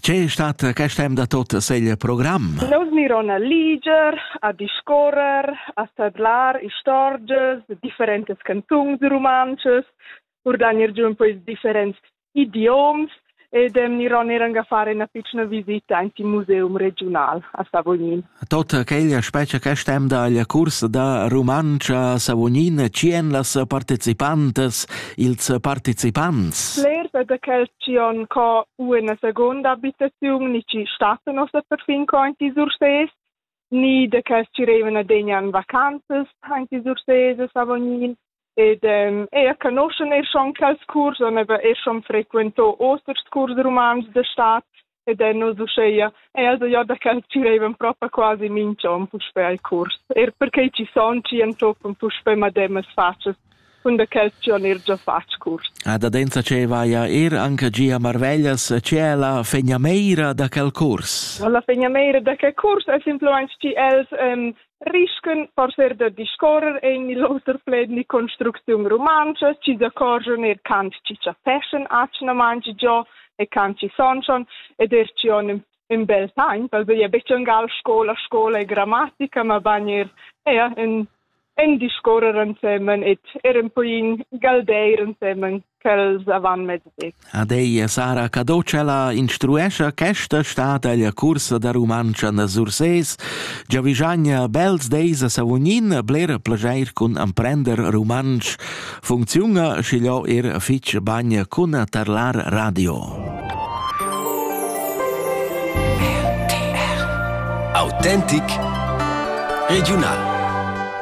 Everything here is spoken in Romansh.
Che è stata quest temp da tot segl program? Nous miron a liger, a discorrer, a tadlar istorgias de differentes cantungs romances, urdanir giù un po' i differents idioms ed miron eran a fare una piccola visita anti museum regional a Savognin. Totta quella spezia che stemda alla cursa da Rumantscha Savognin tschien las participantas, ils participants. Bler da quel tschien co una seconda abitazione ni ci stassen ossa perfin co in ti Surses, ni de quels ci revene degnan vacanzas in ti Surses Savognin. ed ehm, eir conoschan eir schon quels curs, han aber eir schon frequento osters curs rumantsch da stat ed han nus uscheia also ja da quels girevan proprio quasi minch'on puspè al curs, er perché ci son ci entoppan puspè mademas facias cun da quels chi han er già fatg curs. A da densa ce vaia er anche gia marveglias ce è la fegnameira da quel curs? La fegnameira da quel curs è simplemente ci els um, risken per fer da discorrer en il oter pled ni construcziun rumantscha, chi s'accorgion er can chi chapeschen atschna mangi giò e can chi sonschon ed er chi on in bel taimp, also ja betg angal scola, scola e grammatica, ma ban er ja, in, in discorrer ansemen et er un po in galdeir ansemen. quels avant mezdi. Ad ei Sara Cadocella instruescha questa stata la cursa da Rumantscha na Surses, giavischagna bels deis a Savognin bler plageir cun amprender rumantsch, funcziunga schiglio er fitg bagn cun tarlar radio. Autentic Regional